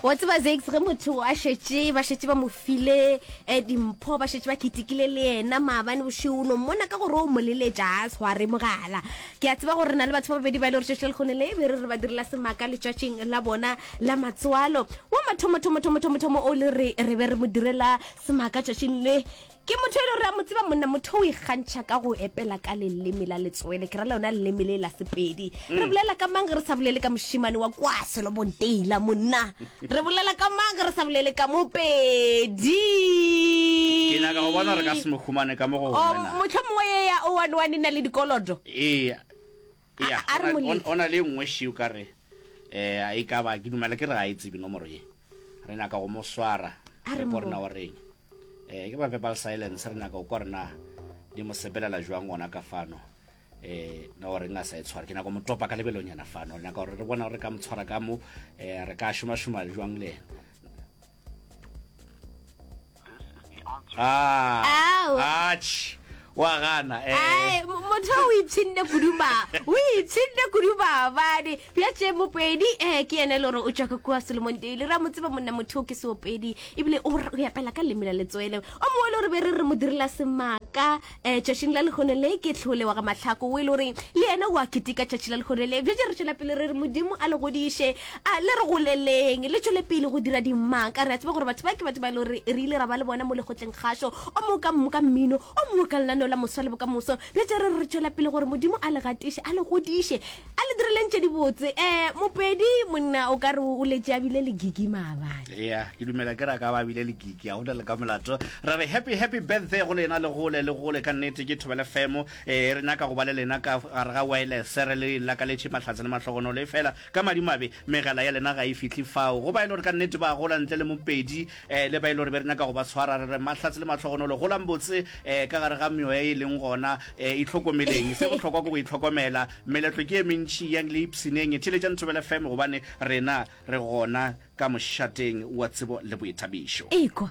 wa tseba zax ge motho a šetše ba šetše ba mo file um dimpho ba šetše ba ketekile le yena maabane bošego no mmona ka gore o moleletša a tshwa re mogala ke a tseba gore re na le batho ba babedi ba e le gore tšatši le lekgone le be re re ba direla semaka letšatšing la bona la matswalo wa mathomothomothomothomo o le re re be re mo direla semaka tšatšing le Ke motho e le gore a mo tseba monna, motho o ikgantšha ka go epela ka leleme la letswele, ke ra lona leleme le la Sepedi. Re mm. bolela ka mang ge re sa bolele ka mošimane wa kwa Selobong Taylor, monna? Re bolela ka mang ge re sa bolele ka Mopedi? Ke nyaka go bona re ka se mo humane ka mo go wena. Oh, motlho mongwe ye ya o one one e na le dikolodo. Ee. Eya, A- a re go na- Molefi. go na le e nngwe še o ka re um e ka ba ke dumela ke re ga e tsebe nomoro ye re nyaka go mo swara A re re ko rena mo- wa reng um ke ba verbal silence re nyaka go kwa rena di mo sepelela jwang gona ka fano um na wa reng a sa e tshwara ke nyaka go mo topa ka lebelonyana fano re nyaka gore re bona gore re ka mo tshwara ka mo um re ka šomašoma jwang le ena Ah, Ao. atšh, wa gana eh. Ai, mo- motho o ipshinne kudu ba o ipshinne kudu babadi bja tše mopedi um ke yene e le gore o tšwa ka kua solomon daily ra mo tseba monna motho o ke seopedi ebile o r- o yapela ka leme la letswele o mongwe le gore be re re mo direla semaka Eh, tšatšing la lehono le ke tlhole wa ga mahlako o e le gore le yena o a ketika tšatši la lehono le bjatše re tšwela pele re re modimo a le godiše a le re goleleng le tšwele pele go dira dimaka re a tseba gore batho ba ke batho ba e le gore re ile ra ba le bona mo lekgotleng kgašo o mongwe ka mongwe ka mmino o mongwe ka lenaneo la moswa le bokamoso bjatše re re tšwela pele gore modimo a le gatiše a le godiše A le dirileng tše dibotse. Eh, Mopedi, monna o ka re o letše a bile le gigi maabane. Ea, ke dumela ke re a ka ba a bile le gigi, a go na le ka molato. Re re happy, happy birthday go lena, le gole, le gole. Ka nnete, ke Thobela FM. Eh, re nyaka go ba le lena ka gare ga waelese. Re le lakaletše mahlatse le mahlogonolo. Efela, ka madimabe, megala ya lena ga e fihle fao. Go ba e le gore ka nnete ba gola ntle le Mopedi, Ee, le ba e le gore be re nyaka go ba tshwara, re re, Mahlatse le mahlogonolo, golang botse ka gare ga meoya e leng gona. Itlhokomeleng. Se bohlokwa ke go itlhokomela. Meletlo ke e mentši, yang le ipshineng. Theeletšang Thobela FM gobane rena re gona ka mošateng wa tsebo le boithabišo. Ekwa!